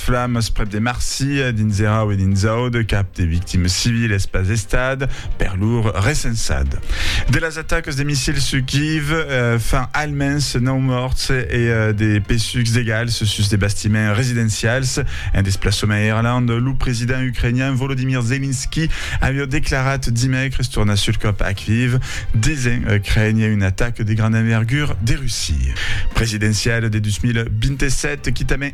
Flames prèp de marsi, dins era ue dins aude cap de victimes civiles pas estat, per lor, recensat. De las atacas de missils sus Kyiv, fan almens nòu mòrts e de pesucs d'egals sus de bastiments residencials en desplaçament a Irlanda. Lo president ucrainian Volodymyr Zelensky aviá declarat dimècres tornar sul còp a Kyiv, disent crénher una ataca de granda envergura de Russia. Presidenciala de 2027, quitament.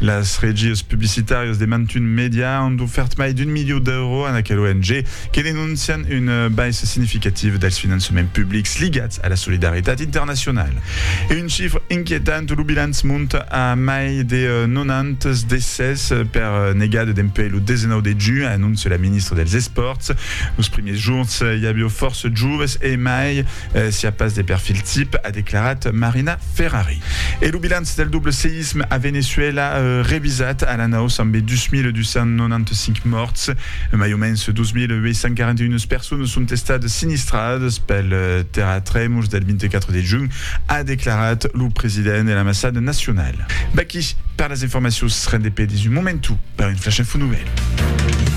Las regies publicitàrias de mantun media an ofèrt mai d'un milió d'euro a aquela ONG, que denoncian una baissa significativa dels finançaments publics ligats a la solidaritat internacionala. E un chifre inquietant, lo bilanç monta a mai de 90 decès per negada dempuèi lo 19 de junh, anóncia la ministra dels Espòrts. Los primièrs jorns i aviá fòrça joves e mai Siá pas de perfil tip, a declarat Marina Ferrari. E lo bilanç del doble seïsme a Veneçuèla revisat a la naus ambe 2.295 mòrts. Mai o mens 2.841 personas son estadas sinistradas pel terratremols del 24 de junh, a declarat lo president de l'ambassada nacionala. Vaquí per las informacions rendepedis un momentu per un flash info novèl.